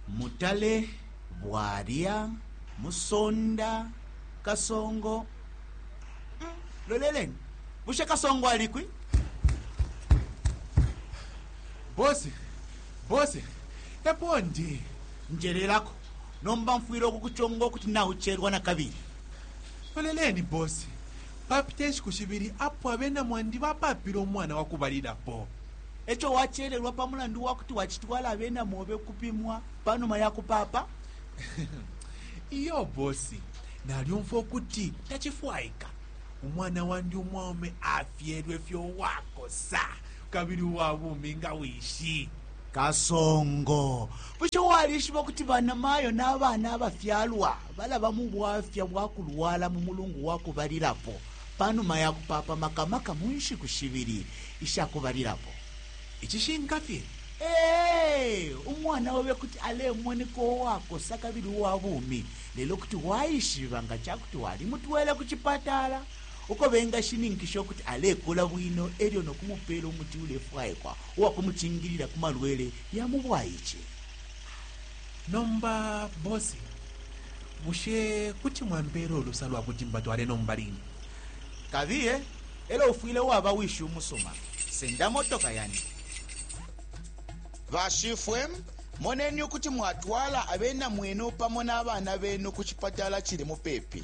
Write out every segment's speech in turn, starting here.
Mutale, Bwalya, Musonda, Kasongo. Mm, loleleni, bushe Kasongo alikwi? Bosi, bosi, epo ndi. Njelelako, nomba mfwile ukukuchonga ukuti naucherwa na kabili. Loleleni, bosi, papite nshiku shibili apo abena mwandi bapapile umwana wakubalilapo. E co wacelelwa pa mulandu wa kuti wacitwala abena mobe ukupimwa pa numa ya kupaapa? Iyo bosi, nalyumfwa ukuti tacifwaika umwana wandi umwaume afyelwe fye uwakosa kabili uwa bumi nga wishi. Kasongo, bushe walishiba ukuti banamayo na bana abafyalwa balaba mu bwafya bwa kulwala mu mulungu wa kubalilapo? pa numa ya kupaapa maka maka mu nshiku shibili isha kubalilapo. Icishinka fye, ee, umwana obe kuti alemoneka uwakosa kabili uwa bumi, lelo kuti waishiba nga ca kuti walimutwele ku cipatala uko bengashininkisha ukuti alekula bwino e lyo no kumupeela umuti ulefwaikwa uwa kumucingilila ku malwele ya mu bwaice. Nomba bosi, bushe kuti mwampeela ulusa lwa kuti mbatwale nomba line? Kabiye, elo ufwile waba wishi umusuma. Senda motoka yandi. Bashifwe, moneni ukuti mwatwala abena mwenu pamo na bana benu ku cipatala cili mupepi.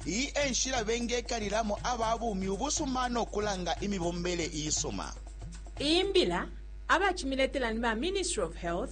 Iyi e nshila bengekalilamo aba bumi ubusuma no kulanga imibombele isuma. Iyi mbila abacimiletela ni ba Ministry of Health,